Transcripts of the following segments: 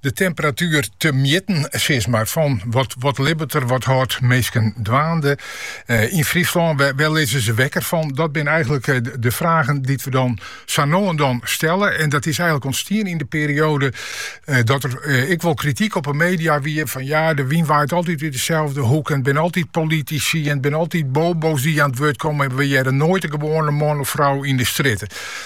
De temperatuer te mjitten sis mar, fan wat, wat libbet der, wat hâldt minsken dwaande eh, yn Fryslân? Wêr, wêr lizze ze wekker fan? Dat binne eigenlik eh, de, de fragen dy't wy dan zo no en dan stellen. En dat is eigenlik ûntstien yn de perioade eh, dat der eh, ek wol krityk op de media wie fan ja, de wyn waait altyd út deselde hoeke, it binne altyd politisy, it binne altyd bobo's dy't oan it wurd komme en wy hearre noait de gewoane man of frou yn de strjitte.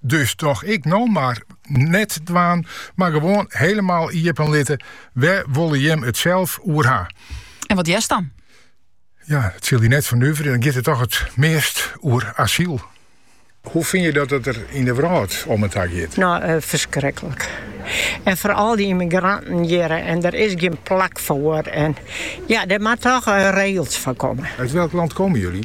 Dus tocht ik no mar net dwaan, mar gewoan helemaal iepen litte, wêr wolle jim it sels oer ha? En wat hearst dan? Ja, it sil dy net fernuvere, dan giet it toch it meast oer asyl. Hoe fyn je dat it der yn de wrâld om en ta giet? No, eh, ferskriklik. En foaral dy ymmigranten hjir en der is gjin plak foar. En ja, der moat toch eh, regels foar komme. Uit welk land komen jullie?